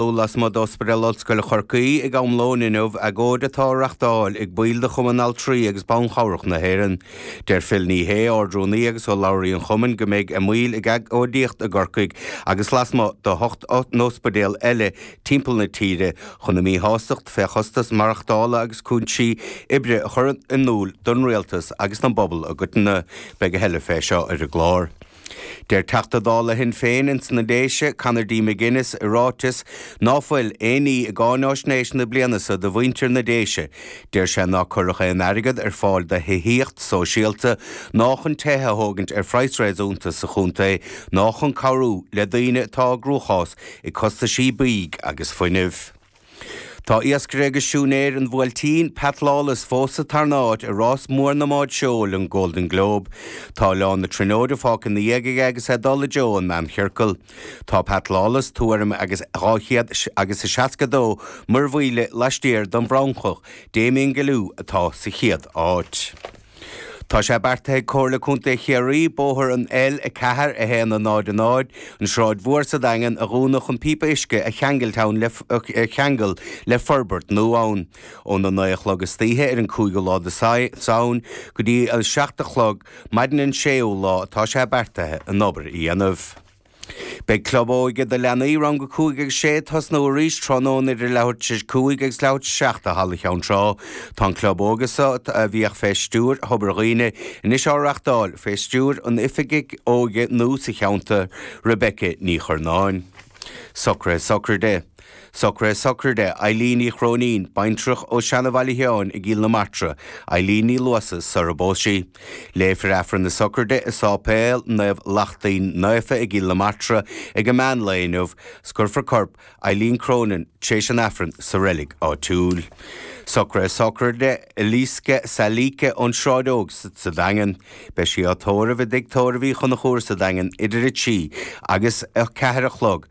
Dul lasmuigh d'Ospidéal Ollscoile Chorcaí ag am lóin inniu, agóid atá á reachtáil ag baill de Chumann Altraí agus Ban Chabhrach na hÉireann. Deir Phil Ní Sheaghdha, Ard-Rúnaí agus urlabhraí an Chumainn, go mbeidh a mbaill ag agóidíocht i gCorcaigh agus lasmuigh d'ocht n-ospidéal eile timpeall na tíre chun a míshástacht fé chostas maireachtála agus cúinsí oibre a chur in iúl don Rialtas agus don bpobal i gcoitinne. Beidh a thuilleadh fé seo ar an gclár. Deir Teachta Dála Shinn Féin ins na Déise, Conor D. McGuinness, i ráiteas, ná fuil aon ní i gcáináisnéis na bliana so do mhuintir na Déise. Deir sé nár cuireadh aon airgead ar fáil do thithíocht sóisialta, ná chun tithe a thógaint ar phraghas réasúnta sa chontae, ná chun cabhrú le daoine atá i gcruachás ag costaisí bídh agus fuinnimh. Tá iascaire agus siúinéir an Bhuailtín, Pat Lawless, fós sa tarna áit i rás mór na mbád seoil, an Golden Globe. Tá Oileán na Tríonóide fágtha ina dhiaidh aige agus é ag dul i dtreo an mheánchiorcail. Tá Pat Lawless tuairim agus dhá chéad agus a seasca a dó muirmhíle laistiar den bhFrancach, Damien Guillou, atá sa chéad áit. Tá sé beartaithe ag Comhairle Contae Chiarraí bóthar an L4100 An Sráid Mhór sa Daingean, a dhúnadh chun píopa uisce a cheangailt ann a cheangal le forbairt nua ann, ón 9 a chlog istoíche ar an 5ú lá de Samhain go dtí an 7 a chlog maidin an 6ú lá atá sé beartaithe an obair a dhéanamh. Beidh Club Óige do Leanaí Rang 5 agus 6 ag tosnú arís tráthnóna idir leathuair tar éis cúig agus leathuair tar éis seacht i Halla Cheann Trá. Tá an Club Óige seo, a bhíodh fé stiúir Thobar Dhuibhne, anois á reachtáil fé stiúir an Oifigigh Óige nua sa cheantar, Rebecca Ní Churnáin. Socruithe Sochraide. Socruithe Sochraide, Eileen Uí Chróinín, baintreach ó Seana-Bhaile Sheáin i gCill na Martra, Eileen Ní Luasa, sara bpós sí. Léifear Aifreann na Sochraide i Sáipéal Naomh Lachtaín Naofa i gCill na Martra ag a meán lae inniu, 's cuirfear corp Eileen Cronin tréis an Aifrinn sa reilig áitiúil. Socruithe Sochraide, Eliska Saleeka, ón Sráid Óg sa Daingean. Beidh sí á tórramh i dTigh Tórraimh Uí Chonchúir sa Daingean idir a trí agus a ceathair a chlog.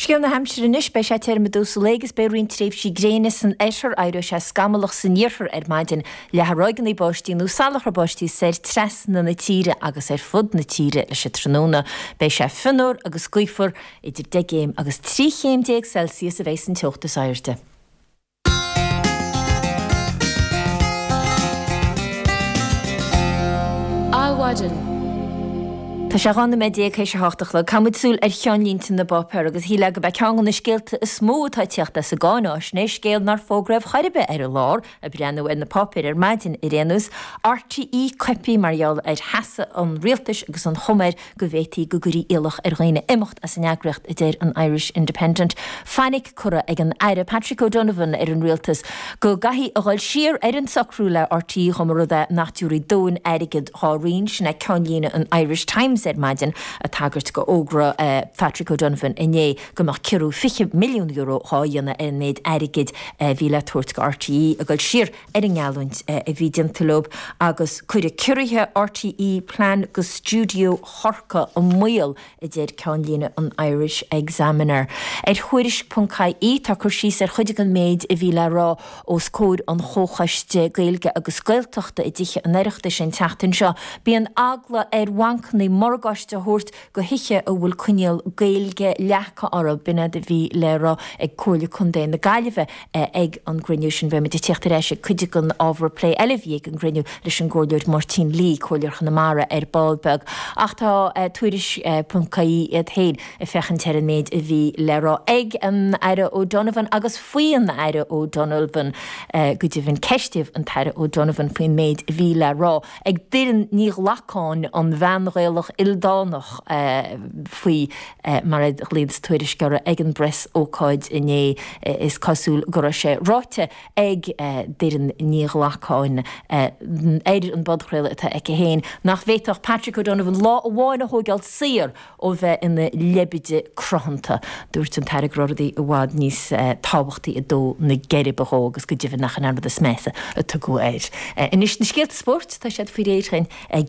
Scéal na haimsire anois, beidh sé tirim i dtús an lae agus beidh roinnt tréimhsí gréine san oirthear, éireoidh sé scamallach san iarthar ar maidin leathfaidh ráigeanna báistí nó salachar báistí soir trasna na tíre agus ar fud na tíre leis an tráthnóna. Beidh sé fionnuar agus gaofar, idir 10 gcéim agus 13 chéim Celsius a bheidh an teocht is airde. Adhmhaidin. Tá sé 12 nóiméad théis a hocht a chlog. Caithfidh muid súil ar cheannlínte na bpáipéar agus shílfeá go b'é ceann de na scéalta is mó atá ag teacht as an gcáináisnéis, scéal nár fógraíodh chor ar bith ar an lá ag breathnú ar na páipéir ar maidin ar aon nós. RTÉ coipthe mar gheall ar sheasamh an rialtais agus an chuma air go bhféadfaí go gcuirfí iallach ar dhaoine imeacht as an eagraíocht, a deir an Irish Independent. Fainic curtha ag an Aire Patrick O'Donovan ar an Rialtas go gcaithfí a dhul siar ar an socrú le RTÉ dá mba rud é nach dtiúrfaí dóthain airgead dhá roinn, sin é ceannlíne an Irish Times ar maidin, ag tagairt go fhógra Phatrick O'Donovan inné go mbeadh ciorrú €20 milliún dhá dhéanamh ar an méid airgid a bhí le tabhairt go RTÉ, ag dul siar ar an ngeallúint a bhí déanta leo agus cuirfidh ciorruithe RTÉ plean go stiúideo Chorcaí i mbaol, a deir ceannlíne an Irish Examiner. Ar Thuairisc.ie tá cur síos ar chuid den mhéid a bhí le rá os comhair an Chomhchoiste Gaeilge agus Gaeltachta i dTithe an Oireachtais an tseachtain seo. Bíonn eagla ar bhancannaí morgáiste a thabhairt go thithe a bhfuil coinníoll Gaeilge leagtha orthu b'in é a bhí le rá ag Comhairle Contae na Gaillimhe ag an gcruinniú sin. Beidh muid ag tíocht ar ais ag cuid den ábhar plé eile a bhí ag an gcruinniú leis an gComhairleoir Máirtín Lee, Comhairleoir Chonamara ar ball beag ach tá Tuairisc.ie iad féin ag féachaint ar an méid a bhí le rá ag an Aire O'Donovan agus faoi an Aire O'Donovan go deimhin. Ceistíodh an tAire O'Donovan faoin méid a bhí le rá. ag Doireann Ní Ghlacáin, an bhean Ghaelach ildánach, faoi mar a ghlaonns Tuairisc uirthi ag an bpreasócáid inné. Is cosúil go raibh sé ráite ag Doireann Ní Ghlacáin ar an bpodchraoladh atá aici féin nach bhféadfadh Patrick O'Donovan lá amháin a thógáil saor ó bheith ina leibide cruthanta. Dúirt an tAire go raibh rudaí i bhfad níos tábhachtaí ag dó na geirbe dhó agus go deimhin nach in é an rud is measa a tugadh air. Anois, na scéalta spóirt, tá siad faoi réir dhúinn ag.